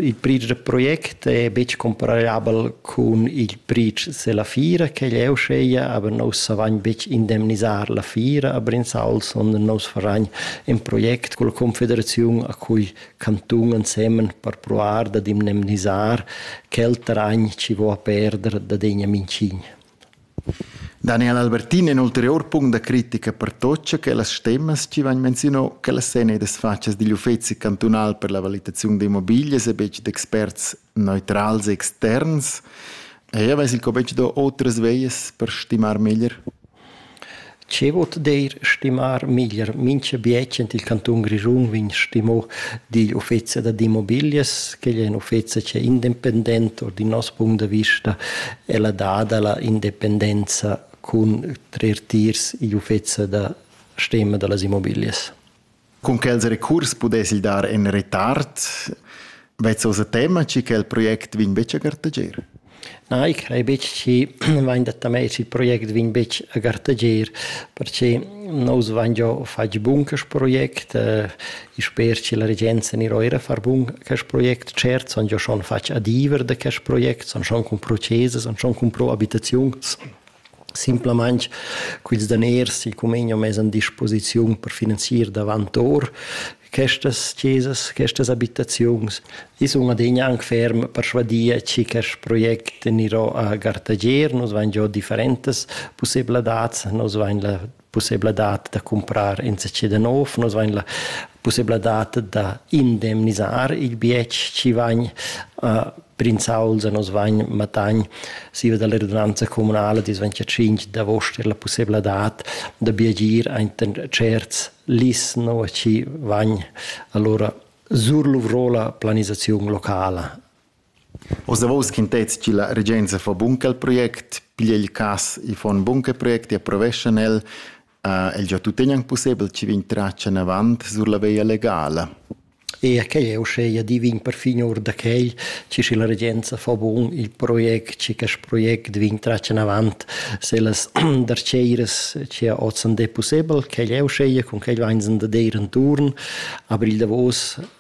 Il pretsch da project è betg comparabel cun il pretsch se la fiera che jeu sceia, aber nus savagn betg indemnisar la fiera a Brinzal, sondern nus faragn in project con la confederaziun a cui cantun ensemen per provar dad indemnisar quel terragn ci vo a perder da degna mincign. Daniel Albertin in ulterior punct da critica pertocca che las temas chi vain menzionò che las sen edas fatschas digl uffezi cantunal per la valitaziun d'immobiglias e betg d'experts neutrals e externs. Eir vess il Cobetsch do otras vejas per stimar meglier? Che vot deir stimar meglier mincha bietsch in il cantun Grischun vegn stimo digl uffezi dad immobilias, quel è in uffezi che è independent or din nos punct da vista è la dada la independenza cun trer tiers igl uffezi da stema da las immobilias. Cun quels recurs pudess il dar in retard vezzosa tema chi quel project vegn betg a gartager? Na, ich crei betg chi vain dat a mei il project vegn betg a gartager, perche nous vain giò fatg bun quest project, eh, i sper chi la regenza gnir eira a far bun quest project, cert sun giò schon fatg adiever da quest project, sun schon cumpro chesas, sun schon cumpro abitaziuns, simplamain quels daners che cumegna mez an disposiziun per finanzier davant or questas chesas, questas abitaziuns. I sun adegna anc ferm persvadia chi quest project anirò a Gartager, nos vain giò differentas pussebladats, nos vain la pussebladad da cumprar insatge da nov. Nus vain la pussebladad da indemnisar il bietg chi vain uh, prinzauls e nos vain matagn siva dalla redunanza comunala dis vain tschinch d'avost er la pussebladad da biagir ainten certs lis no chi vain allora surluvro la planisaziun locala. Oz davos quintets chi la regenza fa bun quel project, piglia il cas i fa ün bun quel project e approveschan el. El già tuttegna ün pussebel chi vegn tratg inavant sur la veia legala. Eir quai è uschea divin perfin our da quai chi schi la regenza fa bun il project, chi quist project vegn tratg inavant sellas darcheiras chi ha hoz ün dè pussebel. Quel è uschea, cun quel vainsan da deir intuorn. Avrigl davos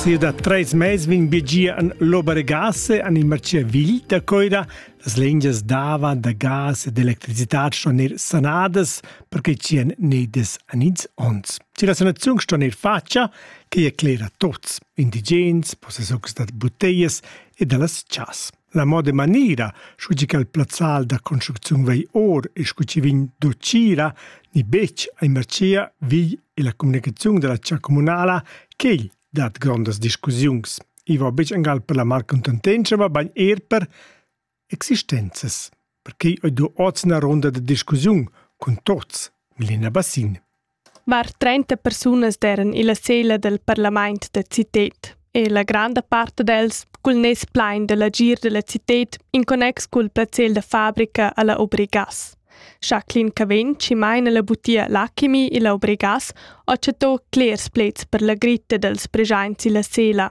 Sia da treis mais vegn bigia an l'Obergasse an in Marciavigl da Coira. Las lingias dava da gas e d'electricitad ston er sanadas perché tien nedes an ins ons. Ci la sanaziun ston er facia che e clera tots, indigens, possessocs da buteias e da las chas. La moda manera, scu chi cha'l plazzal da construcziun vei or e scu chi vegn do Cira ni betg ai Marcia vigl e la communicaziun da la cha communala ch'el dat grondas discussiuns. I va betg angal per la malcontentenscha, ma bagn er per existenzas. perquei ei do oz ina ronda da discussiun cun tuts, Melina Bassin. Var 30 persunas eran illa sela del parlament da citet e la granda part dels cul nes plein dell'agir della citet in connex cul placer da fabrica alla Obrigas. Jacqueline Cavenci maina la butia L'Alchemy illa Obrigas ho chatto clers plets per la gritta dels presents illa sela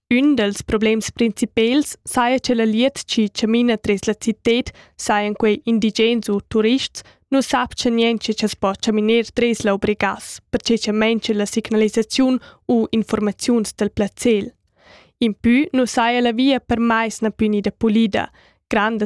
Ün dals problems principels saja cha la glieud chi chamina tras la citad sajan quei indigens u turists, nu sapcha niencha cha's po chaminer tras la Obregas, perche cha maincha la signalisaziun u informaziuns dal plazzel. Impü nu saja la via per mais na plü gnida pulida, grandas